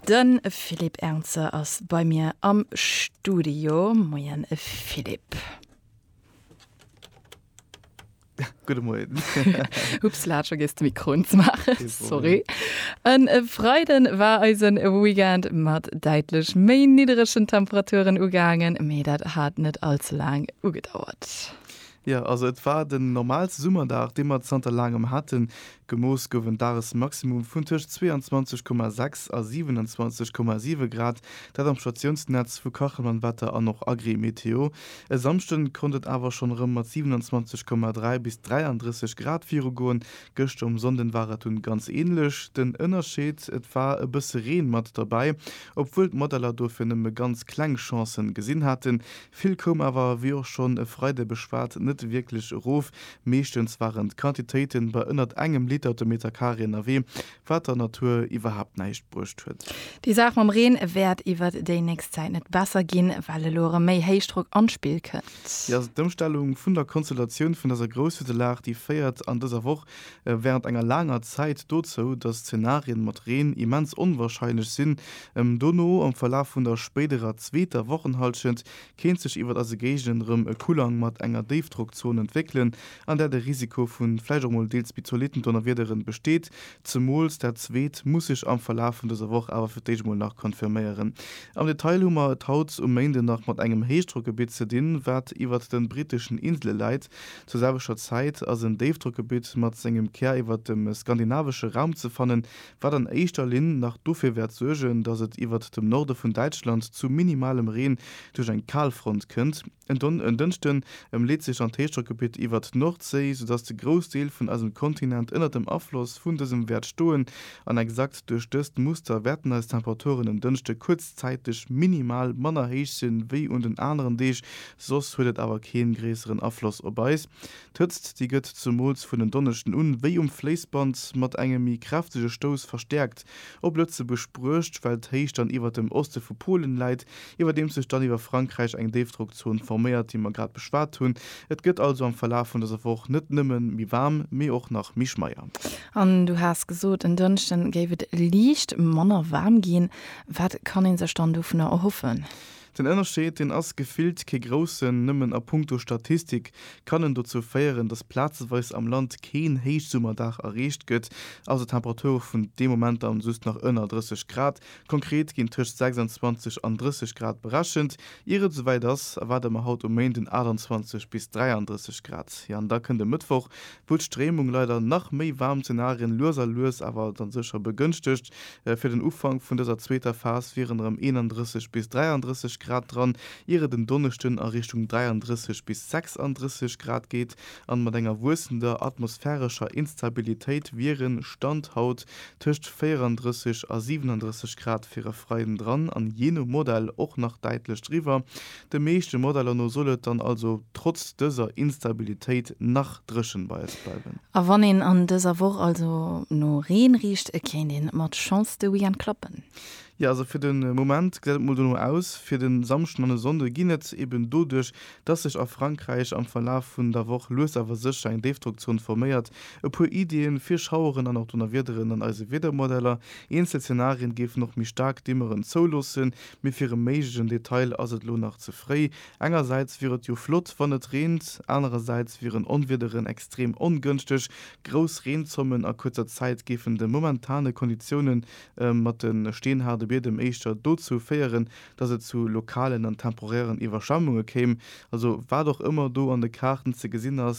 De Philippe Ernzer ass bei mir am Studio. Moien Philippe. Gudde Moien. Upsla, vergiss de Mikro unzemaachen, sorry. E Freiden war eise Weekend mat däitlech méi nidderegen Temperaturen ugaangen, mee dat hat net all ze laang ugedauert. Jo, also et war den normaalste Summerdag, dee mer zanter laangem haten. Gemooss gouf en Dagesmaximum vun tëscht 22,6 a 27,7 Grad, dat am Statiounsnetz vu Kachelmann Wetter an och Agrimeteo. E Samschde konnt et awer schonn erëm mat 27,3 bis 33 Grad virugoen. Gëschter um Sonnden war et dunn ganz änlech. Den Ënnerscheed, et war e bësse Reen mat derbäi, obwuel d'Modeller dofir nëmme ganz kleng Chancen gesinn haten, Vill koum awer, wéi och schonn e Freide beschwat, net wierklech erof. Meeschtens waren d'Quantitéiten bei ënnert engem Liter de Meter Carré ënnerwee, wat der Natur iwwerhaapt näischt bruecht huet. Déi Saach mam Reen wäert iwwert déi nächst Zäit net besser ginn, well elo erëm méi Héichdrock an d'Spill kënnt. Jo, d'Ëmstellung vun der Konstellatioun vun dëser Grousshüttelag, déi féiert an dëser Woch während enger laanger Zäit dozou, dass Zenarien mat Reen immens onwahrscheinlech sinn, em dono am Verlaf vun der spéiderer zweeter Wochenhallschent kéint sech iwwert eise Géigenden erëm e Kulang mat enger Déifdrockzon entwéckelen, an där de Risiko vu vläicht och mol deels méi zolitten Donnerwiederen besteet, zemools dat zweet muss sech am Verlaf vun dëser Woch awer fir d'éischt mol nach confirméieren. Am Detail hu mer et haut um Méinde nach mat engem Héichdrockgebitt ze dinn, wat iwwert de britteschen Insele läit, Zur selwechter Zäit ass en Déifdrockgebitt mat sengem Kär iwwert dem skandinavesche Raum ze fannen, wat an éischter Linn nach dofir wäert suergen, datt et iwwert dem Norde vun Däitschland zu minimalem Reen duerch eng Kalfront kënnt. En Dënschden ëm leet sech dann d'Héichdrockgebitt iwwert d'Nordséi, soudatt de Groussdeel vun eisem Kontinent ënnert dem Afloss vun dësem wäert stoen. An exakt duerch dëst Muster wäerten eis Temperaturen en Dënschde kuerzzäiteg minimal manner héich sinn, wéi un den aneren Deeg Soss huet et awer keen gréisseren Afloss op eis. D'Hëtzt, déi gëtt zumools vun en Donneschden un wéi um Fléissband mat engem méi kräftege Stouss verstäerkt op Lëtzebuerg bruecht, well d'Héicht dann iwwert dem Oste vu Polen läit, iwwerdeems sech dann iwwer Frankräich eng Déifdrockzon forméiert, déi mer grad beschwat hunn. Et gëtt also am Verlaf vun dëser Woch net nëmme méi waarm, mee och nach méi schmeier. An du has gesot, en Dënschden géif et liicht manner waarm ginn. Wat kann een sech dann dovunner erhoffen? Den Ënnerscheed, deen ass gefillt kee groussen, nëmmen a punkto Statistik kann en dozou féieren, datt plazeweis am Land keen Héichsummerdag erreecht gëtt, also Temperature vun deem Moment an just nach ënner 30 Grad. Konkret ginn tëscht 26 an 30 Grad berechent, ier et esouwäit ass, erwaarde mer haut um Méinden 28 bis 33 Grad. Jo, an da kënnt e Mëttwoch, wou d'Stréimung leider nach méi waarm Zenarien lues a lues awer dann sécher begënschtegt. Fir den Ufank vun dëser zweeter Phas wieren erëm 31 bis 33 Grad dran, ier et en Donneschden a Richtung 33 bis 36 Grad geet. An mat enger wuessender atmosphärescher Instabilitéit wieren, Stand haut, tëscht 34 a 37 Grad fir e Freiden dran an jee no Modell och nach däitlech driwwer. De meeschte Modeller no soll et dann also trotz dëser Instabilitéit nach dréchen bei eis bleiwen. A wann een an dëser Woch also no Reen richt, kéint ee mat Chance de Weekend klappen. Jo, also fir de Moment gesäit et mol dono aus. Fir de Samschden an de Sonnde ginn et, eben doduerch, dass sech a Frankräich am Verlaf vun der Woch lues awer sécher eng Déifdrockzon forméiert, e puer Iddien fir Schaueren an och Donnerwiederen an eise Wiedermodeller. Eenzel Zenarien géifen och méi staark Dimmeren zouloossen, Mee fir e méiglegen Detail ass et lo nach ze fréi. Engersäits wier et jo flott, wann et reent, anerersäits wieren Onwiederen extrem ongënschteg. Grouss Reenzommen a kuerzer Zäit géifen de momentane Konditioune mat de steenhaarde Biedem éischter dozou féieren, datt et zu lokalen an temporären Iwwerschwemmunge kéim. Also wat och ëmmer do an de Kaarten ze gesinn ass,